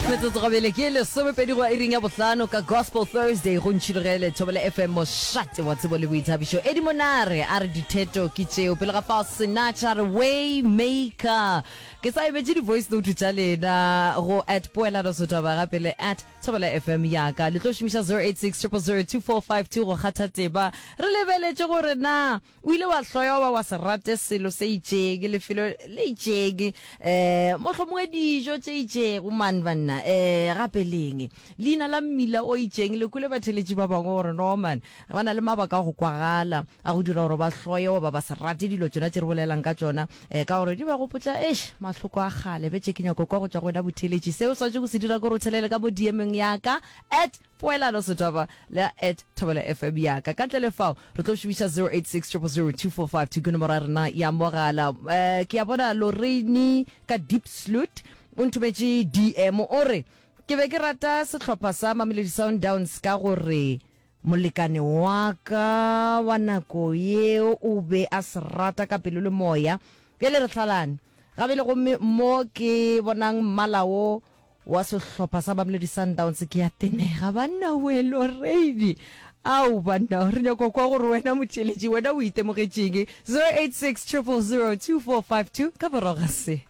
Metsotso go bele ke lesomepedi go iring ya bohlano ka Gospel Thursday go ntšhilogele Thobela FM mošate wa tsebo le boithabišo. Eddie Monare a re ditheto ke tšeo. Pele ga fao Sinach a re way maker. Ke sa emetše di voice note tša lena go at poelano sothaba gape le at Thobela FM yaka. Le tlo šomiša 086 000 2452 go kgatha tema. Re lebeletše gore na O ile wa hloya goba wa se rate selo se itšeng, lefelo le itšeng, um mohlomongwe dijo tše itšeng. Omang, banna? Um gape le'ng? Leina la mmila o itšeng. Le kwele batheeletši ba bangwe gore, Norman, ba na le mabaka a go kwagala a go dira gore ba hloye goba ba se rate dilo tšona tše re bolelelang ka tšona, um ka gore di ba gopotša, eish, mahloko a kgale. Bjale ke nyaka go kwa go tšwa go wena, botheeletši. Seo o swanetšego go se dira ke gore o thelele ka mo DM-eng ya ka, at. Poelano, Setaba le at Thobela FM ya ka. Ka ntle le fao, re tlo šomiša 0860002452 ke nomoro ya rena ya mogala. Eh, ke a bona Lorraine ka Diepsloot o nthometše DM, o re, Ke be ke rata sehlopha sa Mamelodi Sundowns ka gore molekane wa ka wa nako yeo o be a se rata ka pelo le moya. Bjale re hlalane gabele gomme mo ke bonang mmala wo wa sehlopha sa Mamelodi Sundowns ke a tenega. Banna welo reidi. Ao banna re nyako kwa gore wena motšeletši wena o itemogetšeng. 086 000 2452 ka boroga se.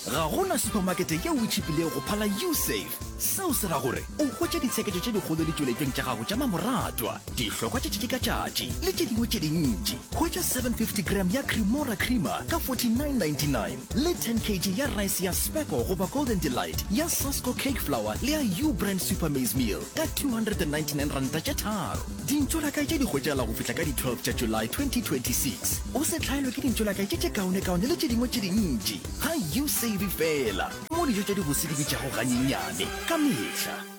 Ga go na supamakete yeo e tšhipilego go phala U-Save. Seo se ra gore o hwetše ditsheketšo tše dikgolo ditšweletšong tša gago tša mamoratwa, dihlokwa tša tšatši ka tšatši le tše dingwe tše dintši. Hwetša 750 gram ya Cremora Creamer ka 49.99. le 10 kg ya rice ya Spekko goba Golden Delight, ya Sasko Cake Flour le ya Ubrand Super Maize Meal ka R299 tše tharo. Dintšolakae tše di hwetšagala go fihla ka di 12 tša July 2026. O se hlaelwe ke dintšolakae tše tše kaonekaone le tše dingwe tše dintši. Ga u save fela mo dijo tša dibose di bitšago ganyenyane ka mehla.